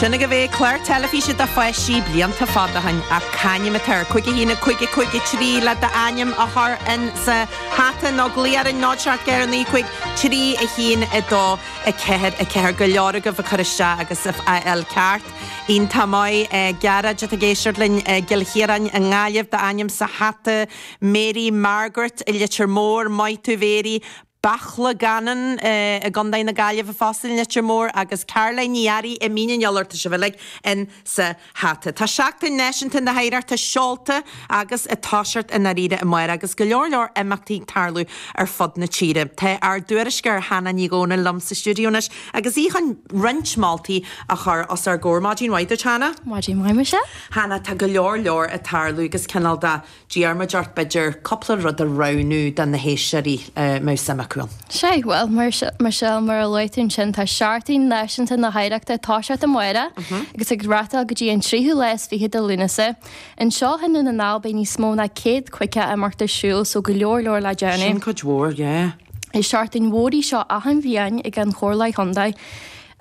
Sin agaibh é, clár teilifíse do pháistí, blianta fada ó shin, ach c'ainm atá air? Cúig a haon, a cúig, a cúig, a trí le d'ainm a chur in sa hata nó glaoigh orainn 0749 5312 44, go leor agaibh ag cur isteach agus á fháil ceart. Iontach maith. Gearóid atá ag éisteacht linn i gCill Chiaráin i nGaillimh, d'ainm sa hata, Mary Margaret i Leitir Móir, maith thú Mary, Beartla Gannon i gContae na Gaillimhe fosta i Leitir Móir, agus Caroline Ní Fhearraigh i Mín an Iolair, tá sibh uilig in sa hata. Tá Seachtain Náisiúnta na hOidhreachta seolta agus ag toiseacht i ndáiríre amárach, agus go leor leor imeachtaí ag tarlú ar fud na tíre. Tá ár dtuairisceoir Hannah Ní Dhomhnaill liom sa stiúideo anois agus í chun roinnt moltaí a chur os ár gcomhair. Maidin mhaith duit, Hannah. Maidin mhaith, Michelle. Hannah, tá go leor leor ag tarlú agus cineál de d'iarr muid ort b'fhéidir cúpla rud a roghnú do na héisteoirí a mbeadh suim acu ann. Sé, bhuel, Michelle, mar a luaigh tú ansin, tá Seachtain Náisiúnta na hOidhreachta ag toiseacht amárach agus ag reáchtáil go dtí an tríú lá is fiche de Lúnasa. Anseo i nDún na nGall beidh níos mó ná céad caoga imeacht ar siúl so go leor leor le déanamh. Sin cuid mhór, yeah. Is seachtain mhór í seo achan bhliain ag an Chomhairle Chontae.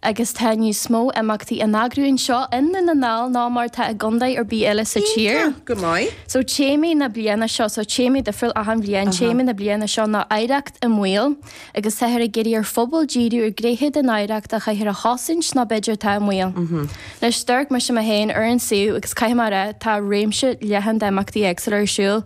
agus tá níos mó imeachtaí á n-eagrú anseo i nDún na nGall ná mar atá i gcontae ar bith eile sa tír. Iontach go maith. So téama na bliana seo, so téama difriúil achan bhliain, téama na bliana seo ná oidhreacht i mbaol agus táthar ag iarraidh ar phobail díriú ar ghnéithe den oidhreacht a chaithfear a chosaint nó b'fhéidir atá i mbaol. Anois, d'amharc mise mé féin ar an suíomh agus caithfidh mé a rá, tá réimse leathan d'imeachtaí éagsúla ar siúl.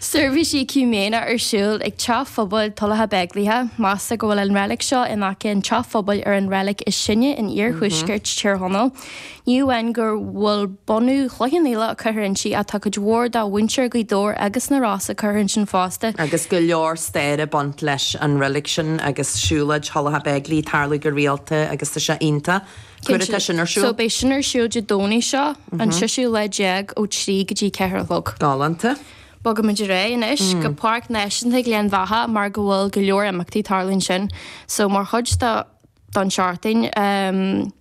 Seirbhís éacúiméineach ar siúl ag Teach Phobail Thulacha Beigile, meastar go bhfuil an reilig seo in aice an teach phobail ar an reilig is sine in iarthuaisceart Thír Chonaill. Ní amháin go bhfuil bunadh Chloich Cheann Fhaola curtha inti ach tá cuid mhór de mhuintir Ghaoth Dobhair agus na Rosa curtha ansin fosta. Agus go leor staire ag baint leis an reilig sin agus siúlóid Thulacha Beigile ag tarlú go rialta agus tá sé iontach. Cá huair atá sin ar siúl. So beidh sin ar siúl Dé Domhnaigh seo, an seisiú lá déag ó trí go dtí ceithre a chlog. Galánta. Bogfaimid ar aghaidh anois go Páirc Náisiúnta Ghleann Bheatha mar go bhfuil go leor imeachtaí ag tarlú ansin. So mar chuid do don seachtain ehm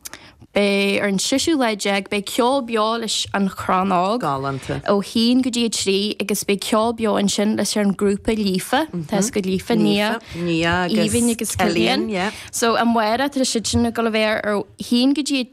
beidh ar an seisiú lá déag beidh ceol beo leis an Chrann Óg. Galánta. Ó haon go dtí a trí agus beidh ceol beo ansin leis ar an grúpa Líofa, Táscaire Líofa, Nia, Nia, Aoibhinn agus Cillian. Cillian, yeah. so amárach, tá siad sin ag dul a bheith ar ó haon go dtí a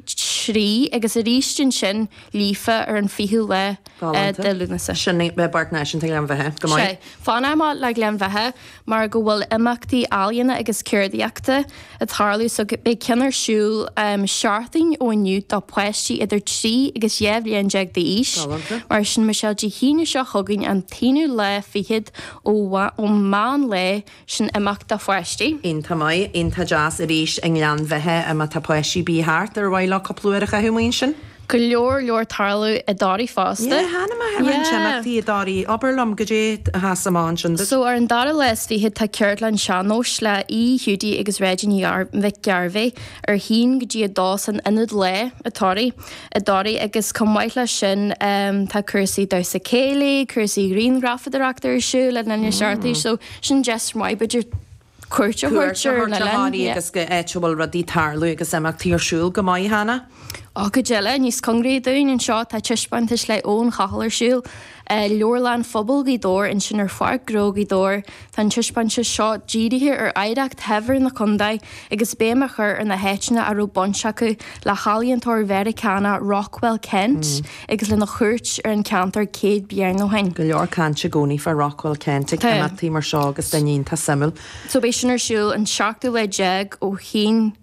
trí agus arís ansin Líofa ar an 20ú lá de Lúnasa. Sin é, bheith i bPáirc Náisiúnta Ghleann Bheatha, go maith. Sea, fanfaimid le Gleann Bheatha mar go bhfuil imeachtaí ealaíona agus ceardaíochta ag tarlú so beidh ceann ar siúl seachtain ó inniu do pháistí idir trí agus dhá bhliain déag d'aois. Galánta. Mar sin Michelle Dé hAoine seo chugainn an t-aonú lá fichead ó mheán lae sin imeacht do pháistí. iontach maith, iontach deas arís i nGleann Bheatha má tá páistí ar bith thart ar mhaith leo cúpla uair a chaitheamh amuigh ansin. go leor leor ag tarlú i dToraigh fosta. Yeah, tháinig mé thar roinnt imeachtaí i dToraigh. Abair liom, goidé a thosaigh mé ansin duit? So, ar an dara lá is fichead tá ceardlann sean-nóis le hAodh, Hiúdaí agus Reggie Ní Mhic Gairbheith óna haon go dtí a dó san Ionad Lae i Toraigh i dToraigh agus chomh maith leis sin tá cúrsaí damhsa céilí, cúrsaí grianghrafadóireachta ar siúl in Inis Artúis so, sin deis mhaith b'fhéidir cuairt a thabhairt ar an oileán agus go háit a bhfuil rudaí ag tarlú agus imeachtaí ar siúl go maith cheana. Ó cuid eile níos cóngaraí dúinn anseo tá taispeántas le Eoin Chathal ar siúl i Leabharlann Phobail Ghaoth Dobhair ansin ar Pháirc Ghnó Ghaoth Dobhair. Tá an taispeántas seo dírithe ar oidhreacht shaibhir na contae agus béim a chur ar na háiteanna a raibh baint acu le healaíontóir Mheiriceánach Rockwell Kent. agus lena chuairt ar an cheantar céad bliain ó shin. Go leor cainte i gcónaí fá Rockwell Kent ag imeachtaí mar seo agus duine iontach suimiúil. So beidh sin ar siúl an seachtú lá déag ó shin,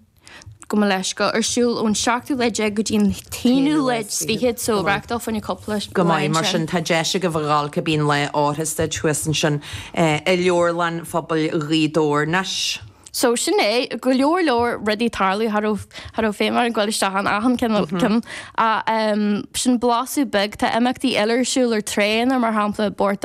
gabh mo leithscéal, ar siúl ón seachtú lá déag go dtí an t-aonú lá is fichead, so reáchtáil fá choinne cúpla lá ansin. Go maith, mar sin tá deis agaibh a dhul cá bith lá áthais duit thuas ansin i Leabharlann Phobail Ghaoth Dobhair. So sin é, go leor leor rudaí ag tarlú cha raibh feidhm orainn ghabháil isteach in achan cionn acu, sin blaiseadh beag, tá imeachtaí eile ar siúl ar tré na mar shampla bport